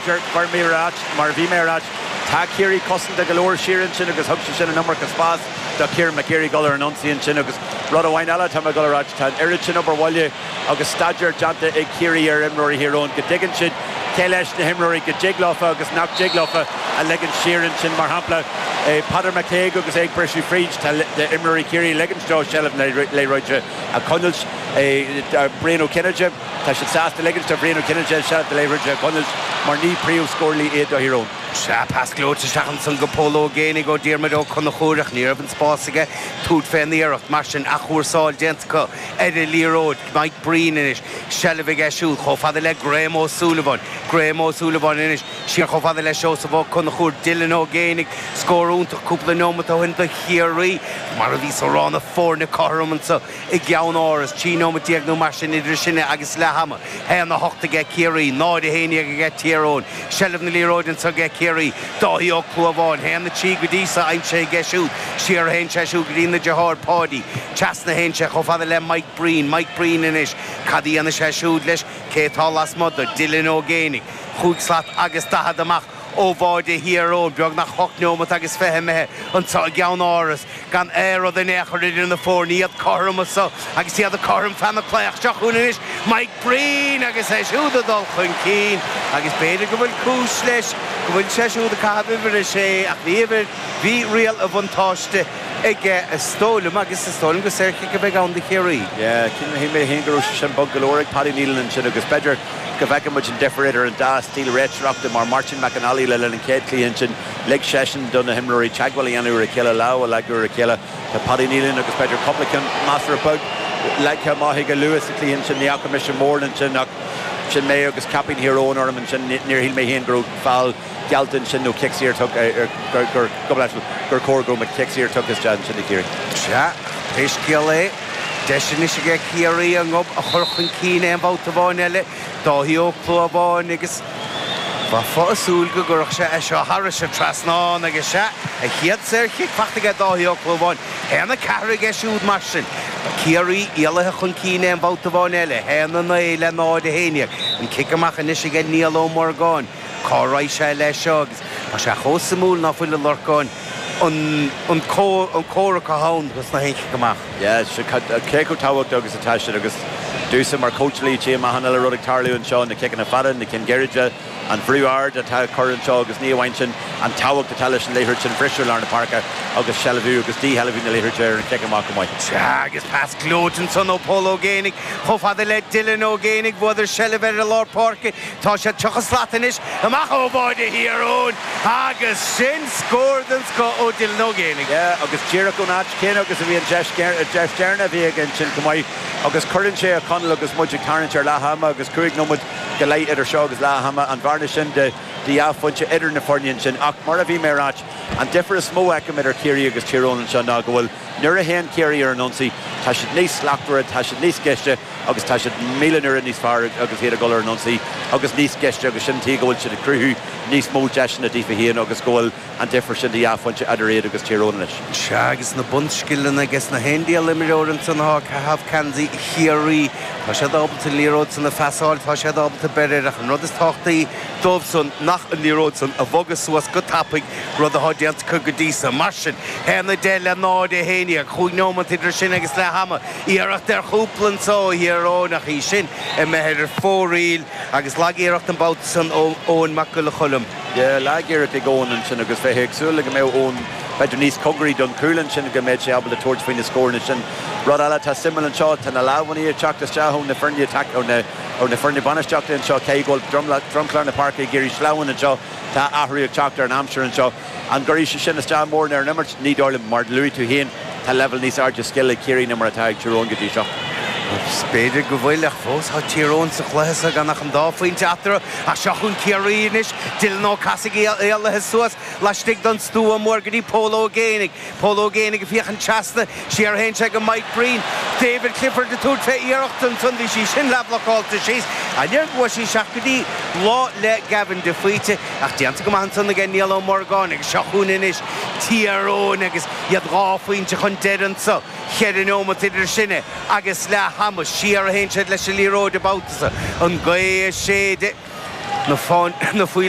Deir Gormley ar áit, mar a bhí mé a ráit, tá Ciarraí cosanta go leor siar ansin agus thug sé sin an iomarca spás do Kieran McGeary dul ar an ionsaí ansin agus rud amháin eile atá mé ag dul a ráit, tá an oiread sin obair bhaile agus staidéar déanta ag Ciarraí ar imreoirí Thír Eoghain go dtuigeann siad cé leis na himreoirí go dtig leofa agus nach dtig leofa a ligint siar ansin. Mar shampla, Peadar McCague agus é ag briseadh fríd, tá imreoirí Chiarraí ag ligint dó seilbh na liathróide a choinneáilt. Brian Ó Cinnéide. Tá siad sásta ligint do Bhrian Ó Cinnéide seilbh na liathróide a choinneáilt mar ní príomhscórálaithe iad do Thír Eoghain. Sea, pas gleoite isteach ansan go Pól Ó Géibheannaigh ó Diarmuid Ó Conchúir ach ní raibh an spás aige tabhairt fén iarracht. Mar sin, athchúrsáil déanta acu ar an liathróid. Mike Breen anois. Seilbh aige siúd chomh fada le Graham Ó Súilleabháin. Graham Ó Súilleabháin anois siar chomh fada le Seosamh Ó Conchúir. Dylan Ó Géibheannaigh. Scór iontach cúpla neomat ó shin do Chiarraí. Mar a bhíos a rá, na foirne cothrom anso. i gCeannáras, trí nóiméad déag nó mar sin idir sinn agus leath ama, haon a hocht ag Ciarraí, náid a haon déag ag Tír Eoghain, seilbh na liathróide anseo ag Ciarraí, Dáithí Ó Clúmháin, haon a trí go dtí seo aimsithe aige siúd, siar a théann sé siúd go dtína dheartháir, Páidí, trasna a théann sé chomh fada le Mike Breen, Mike Breen anois, cad a dhéanfaidh sé siúd leis, cé atá lasmuigh dó, Dylan Ó Géibheannaigh, chúig slat agus daichead amach. Ó bháide Thír Eoghain, beagnach hocht neomat agus fiche imithe anseo i gCeannáras, gan aon rud in aon chor idir na foirne, iad cothrom anso agus iad cothrom feadh na slí. Ach seo chugainn anois Mike Breen agus é siúd ag dul chun cinn agus b'fhéidir go bhfuil cúis leis go bhfuil sé siúd ag caitheamh uimhir a sé ach ní uimhir Bhí riail an bhuntáiste aige is dóigh liom agus is dóigh liom gur saorchic a bheidh ann do Chiarraí. Shíl mé fhéin go raibh sé sin bog go leor ag Paddy Neilan ansin agus b'fhéidir go bhfeicfidh muid an difear idir an dá stíl réiteoireachta mar Martin McNally le linn an chéad chluiche ansin lig seisean do na himreoirí teagmháil a dhéanamh ar a chéile lámh a leagadh ar a chéile tá Paddy Neilan agus b'fhéidir cúpla ceann measartha beag leagtha amach aige luath sa chluiche ansin ní fhaca mise mórán ansin ach sin mé agus caipín Thír Eoghain orm ansin níor shíl mé féin go raibh foul geallta ansin nó cic saor tugtha ar gur gur chóir go raibh cic saor tugtha isteach ansin ag Ciarraí. Sea, pé scéal é, Deis anois aige Ciarraí a ngob a chur chun cinn aon bhabhta amháin eile, Dáithí Ó Clúmháin, agus bheifeá ag súil go gcuirfeadh sé é seo thairis an trasnán agus sea, a chéad saorchic faighte aige Dáithí Ó Clúmháin. 1-4 aige siúd mar sin. Ciarraí éalaithe chun cinn aon bhabhta amháin eile, 1-9 le 0-11. An cic amach anois aige Niall Ó Morgáin. Cá raghaidh sé leis seo agus tá sé chomh suimiúil ná fuil, a Lorcáin. an comhrac atá ann dos na haon chic amach. Yes, cé chomh tábhachtach agus atá siad agus domhsa mar chóitseálaí tchím achan uile rud ag tarlú anseo, na ciceanna fada, na cinn gairide, an brú ard atá á chur anseo agus ní amháin sin, an tábhacht atá leis an liathróid sin a bhriseadh i lár na páirce agus seilbhiú agus dísheilbhiú na liathróide ar an chic amach amuigh. Sea, agus pas gleoite ansan ó Pól Ó Géibheannaigh chomh fada le Dylan Ó Géibheannaigh, bhuadar seilbh ar an lár páirce, Tá siad 30 slat anois amach ó bháide Thír Eoghain agus sin scór den scoth ó Dylan Ó Géibheannaigh. Yeah agus díreach ón áit chéanna agus a bhí an deis deireanach a bhí aige ansin chomh maith agus cuireann sé a Conall agus muid ag tarraingt ar leath ama agus cúig nóiméad go leith idir seo agus leath ama, an bhearna sin de dhá phointe idir na foirne ansin ach mar a bhí mé a ráit, an difear is mó a fheicim idir Ciarraí agus Tír Eoghain anseo ná go bhfuil. Nuair a théann Ciarraí ar an ionsaí, tá siad níos slachtmhaire, tá siad níos gaiste agus tá siad míle n-uaire níos fearr agus iad ag dul ar an ionsaí agus níos gaiste agus sin an tuige go bhfuil siad ag cruthú níos mó deiseanna daofa féin agus go bhfuil an difear sin de dhá phointe idir iad agus Tír Eoghain anois. Sea, agus na bunscileanna aige sna haon diabhal imreoir ansan atá ag caitheamh geansaí Chiarraí. Tá siad ábalta an liathróid san a phasáil, tá siad ábalta breith air ach an rud is tábhachtaí, dóibhsean ná an liathróid san a bhogadh suas go tapaidh, rud atá déanta acu go dtí so. Mar sin, 1, 10 le 0, 11, chúig neomat idir sinn agus leath ama. Iarracht ar chúl anso ó Thír Eoghain ach í sin imithe ar fóraoil agus lagiarracht an babhta san ó Eoin Mac Giolla Choilm. Yeah, lagiarracht ag Eoin ansin agus bheiféa ag súil le go mbeadh Eoin b'fheidir níos cóngaraí don chúl ansin go mbeadh sé ábalta tabhairt faoi na scóranna sin. Rud eile atá suimiúil anseo, tá na lámhainní ag teacht isteach ó na foirne ó na. Ó na foirne bainistíochta anseo, cé go bhfuil dromchla na páirce ag éirí sleamhain anseo, tá athrú ag teacht ar an aimsir anseo. An gcuirfidh sé sin isteach mórán ar an imirt? Ní dóigh liom. Mar a luaigh tú féin, tá leibhéal níos airde scile ag Ciarraí ná mar atá ag Tír Eoghain go dtí seo. Agus b'fhéidir go bhfuil, ach fós tá Tír Eoghain sa chluiche seo gan ach an dá phointe eatarthu. Ach seo chugainn Ciarraí anois, Dylan Ó Cathasaigh éalaithe suas laistigh den stua mór go dtí Pól Ó Géibheannaigh. Pól Ó Géibheannaigh ag féachaint trasna. Siar a théann sé go Mike Breen. David Clifford ag tabhairt fé iarracht ansan. Bhí sí sin leathbhlocáilte síos. An oiread go bhfuair sí isteach go dtí lámha Gavin de Faoite. Ach déanta go maith ansan aige Niall Ó Morgáin. Agus seo chugainn anois Tír Eoghain agus iad dhá phointe chun deiridh anso. Cheithre neomat idir sinn agus leath ama. Siar a théann siad leis an liathróid an babhta so. An ghaoth ag séideadh na faoileáin.